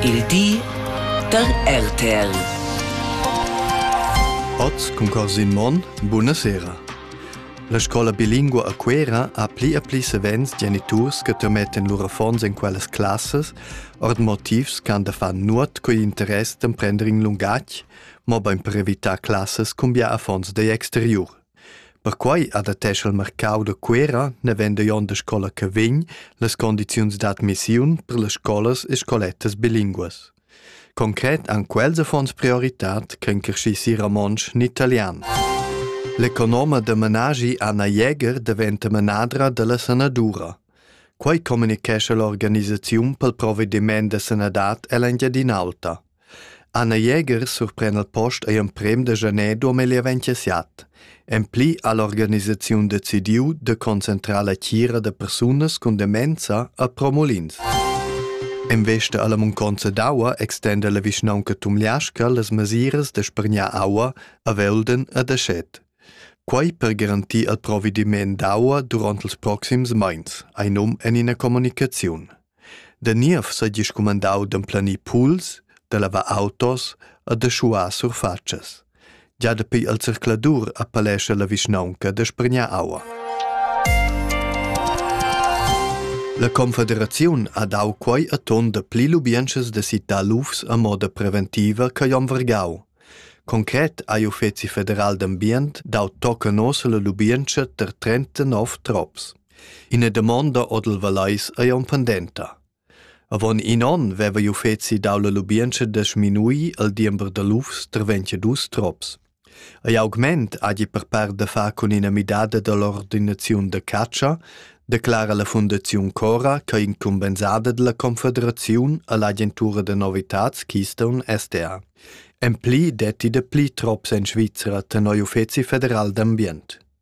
Il di da RTL. Oz cun Corsin Monn, buna sera. La scola bilingua a Cuera ha pli e pli savens geniturs che termetten lur affons en quellas classas, ord motivs ch'han da far nuot coi interess d'emprender in lungatg, mo bein per evitar classas cumbia affons degl exteriur. Perquai adattescha il marcau da Cuera, navenda jon da scola che vegn, las condiziuns d'admissiun per las scolas e scolettas bilinguas. Concret han quels affons prioritad ch'en crescissi romontsch ni italian. L'economa da menagi Anna Jäger daventa menadra dalla sanadura. Quai communicescha l'organisaziun pel provvediment da sanadad ell'Engiadin'Alta. Anna Jäger surpren al post ei emprem da janer duamilli e vintiset. En pli ha l'organisaziun decidiu de concentrar la tgira da persunas cun demenza a Promolins. En vesta alla munconza d'aua extenda la vischnaunca Tumliasca las mesiras da spregnar aua a Velden e da Schet. Quei per garantir al provediment d'aua duront els proxims meins, ei num en ina comunicaziun. Da niev seigi scumandau d'emplanir puls, da lavar autos e da schuar surfatschas. Gia dapi il zercladur appellescha la vischnaunca da spregnar aua. La Confederaziun ha dau quei a ton da pli lubientschas da citar lufs a moda preventiva che Jon Vergau. Concret ha l'Uffizi federal d'ambient dau tocca nossa la lubientscha ter 39 trops. Ina damonda odel Valais ei aunc pendenta. Avon in onn veva il uffeci dau la lubientscha da sminuir il diember da lufs tra 22 trops. Ei augment hagi per part da far cun ina midada dall'ordinaziun da catscha, declara la Fundaziun Cora che incumbensada dalla Confederaziun all'agentura da novitads Keystone SDA. En pli detti da pli trops en Svizzera tenor uffeci federal d'ambient.